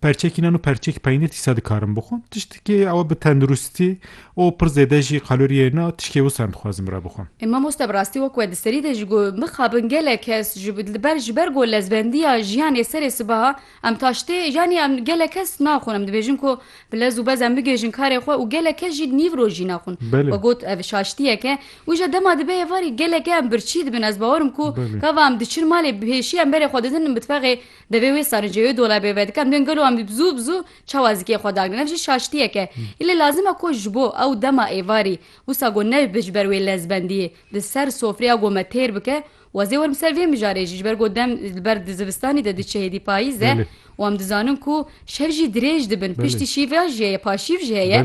Perçek înan û perçek peynîr dîsa dikarim bixwim. Tiştekî ew bi tenduristî û pir zêde jî kalorîyê înan tişkê wisa em dixwazin bira bixwim. Ê mamoste bi rastî wek we di serî de jî got, mixabin gelek kes ji li ber ji ber ku lezbendîya jiyanê serê sibaha em taştê yanî em gelek kes naxwin em dibêjin ku bi lez û bez em bigihêjin karê xwe û gelek kes jî nîv rojî naxwin. We got ev şaştîyek e. Wî jî dema dibe êvarî gelek em birçî dibin ez bawer im ku gava em diçin malê pêşî em berê xwe didin mitbexê Devê wê sericêyo dolebê vedikan duyên gelo em bi zû bi zû çawa zikê xwe dagrin. Ev jî şaştiyek e. Îlê lazim e ku ji bo ew dema êvarî wisa ku ne bi ji ber wê lezbendiyê di ser sofreya ku me têr bike û ez ê werim ser vê mijarê jî ji ber ku dem li ber di zivistanê de diçe hêdî payîz e û em dizanin ku şev jî dirêj dibin piştî şîveya jî heye paşîv jî heye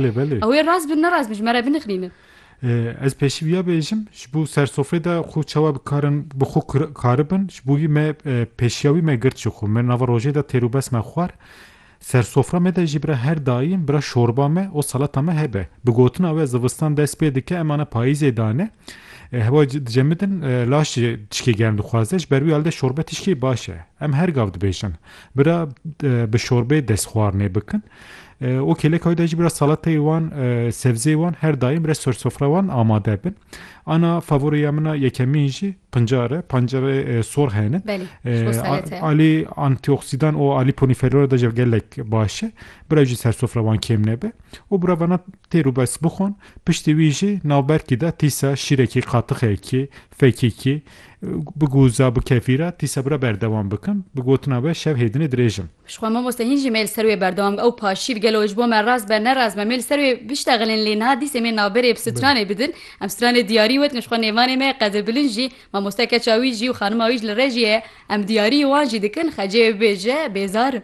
ew ê rast bin ne rast bin ji me re binixnînin. Ez pêşî wiya bêjim, ji bo sersofrê de xwe çawa bikarin bi xwe karibin, ji bo wî me pêşiya wî me girt ji xwe. Me nava rojê de têrûbes me xwar. Sersofra me de jî bira her daîm bira şorba me û salata me hebe. Bi gotina we zivistan dest pê dike em ana payîzê dane. Hewa dicemidin laş jî tişkê germ dixwaze. Ji ber wî alde şorbe tişkê baş e. Em her gav dibêjin bira bi şorbê destxwarinê bikin. û kêleka wê de jî biraz salateyê wan sebzê wan her daim re ser sofra wan amade bin ana favoriya min a yekemîn jî pincar e pancar e sor hene alî antîoksidan û alî ponîferora de jî gelek baş e bira jî ser sofra wan kêm nebe û bira vana têr û bes bixwin piştî wî jî navberkî de tîsa şîrekî qatixekî fekîkî bi gûza bi kefîra tîsa bira berdewam bikin bi gotina be şev hêdinê dirêjim Jixwe mamoste hîn jî me li ser wê berdewam ew paşîr gelo ji bo me rast be ne rast be me li ser wê biştexilin lê niha dîsê me navberê bi stranê bidin em stranê diyarî wet jixwe nêvanê me Qedir Bilind jî mamoste keça wî jî û xanima wî ji li rejî ye em diyarî wan jî dikin xecê bibêje bêzar im.